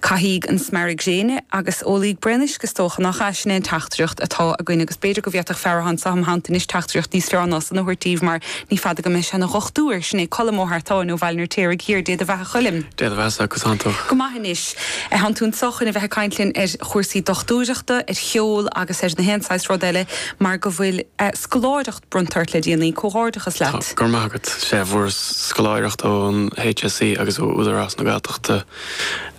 Caithíg an smearadh gréine agus ólaíg braon uisce, is dócha, nach ea, sin é an teachtaireacht atá againn agus b'fhéidir go bhféadfadh fear athá anso im theannta anois teachtaireacht níos fearr ná san a thabhairt daoibh mar ní fada go mbeidh sé ina dhochtúir, sin é Colm Ó hEartáin ó Bhaile an Fheirtéaraigh Thiar, Dé do bheatha Choilm! Dé do bheathasa, conas tánn tú? Go maith anois. Thánn tú anseo chun a bheith ag caint linn ar chúrsaí dochtúireachta, ar cheol agus ar na haon saghas rud eile mar go bhfuil scoláireacht bronnta ort le déanaí, comhghairdeachas leat! go raibh maith agat. Sea, fuaireas scoláireacht ón HSE agus ó Údarás na Gaeltachta.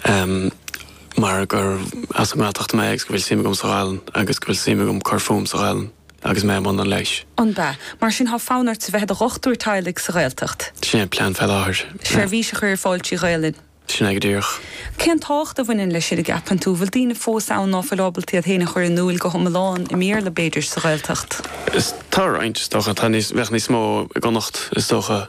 Em. mar gur as an nGaeltacht mé agus go bhfuil suim agam sa Ghaelainn agus go bhfuil suim agam cur fúm sa Ghaelainn agus mé i mbun an leighis. An b'ea? Mar sin thá fonn ort bheith i do dhochtúir teaghlaigh sa Ghaeltacht? Sin é an plean fé láthair. Seirbhís a chur ar fáil trí Ghaelainn? Sin é go díreach. Cén tábhacht a bhaineann leis sin a gceapann tú? Bhfuil daoine fós ann ná fuil ábalta iad féin a chur in úil go h-iomlán i mBéarla b'fhéidir sa Ghaeltacht? Is, tá roinnt, is dócha. Tá níos, bheadh níos mó i gConnacht is dócha.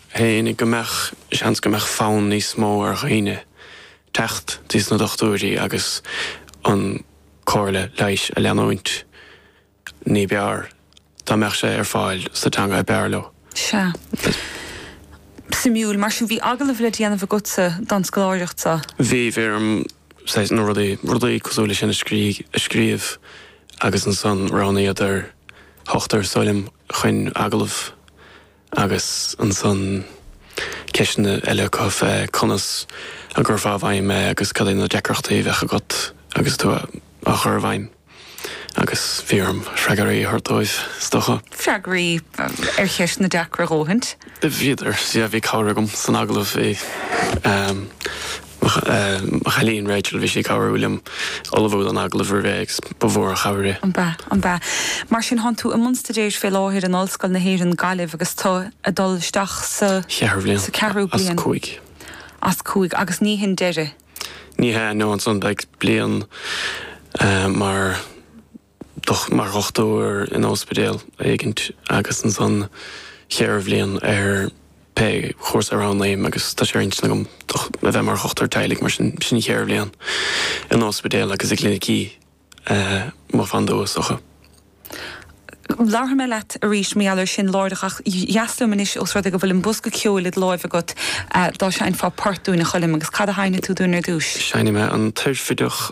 Tháinig go mbeadh seans go mbeadh fonn níos mó ar dhaoine teacht dtí sna dochtúirí agus an comhairle leighis a leanúint ní b'fhearr dá mbeadh sé ar fáil sa teanga ab fhearr leo. Sea. Suimiúil. Mar sin, bhí agallamh le déanamh agatsa don scoláireacht seo? Bhí. Bhí orm saghas, nó rudaí, rudaí cosúil le sin a scríobh agus ansan roghnaíodar ochtar is dóigh liom chuin agallamh. Agus ansan ceisteanna eile acu fé conas a gcuirfeá i bhfeidhm é agus cad é na deacrachtaí a bheadh agat agus tú á chur i bhfeidhm. Agus bhí orm freagraí a thabhairt dóibh, is dócha. Freagraí ar cheisteanna deacra a dhóthaint? Bhíodar, sea. Bhí cabhair agam san agallamh. Bhí. Mo chailín Rachel, bhí sí ag cabhrú liom ullmhú don agallamh roimh ré agus ba mhór an chabhair é. An b'ea, an b'ea. Mar sin thánn tú i mbun staidéir fé láthair in Ollscoil na hÉireann, Gaillimh agus tú ag dul isteach sa. cheathrú bhliain. sa ceathrú bhliain. as cúig. as cúig agus ní hin deireadh. Ní hea, nó ansan beidh bliain mar. mar dhochtúir in óspidéal éigint agus ansan cheithre bhliain ar pé chúrsa a roghnaím agus tá sé ar intinn agam a bheith mar dhochtúir teaghlaigh mar sin sin cheithre bhliain in óspidéal agus i gclinicí mo bhandiúasacha. Labharfaidh mé leat arís mar gheall air sin, láithreach, ach dheas liom anois os rud é go bhfuil an bosca ceoil id láimh agat, dá seinnfeá port dúinn, a Choilm, agus cad a sheinnfidh tú dúinn ar dtúis? Seinnfidh mé An Tairfideach.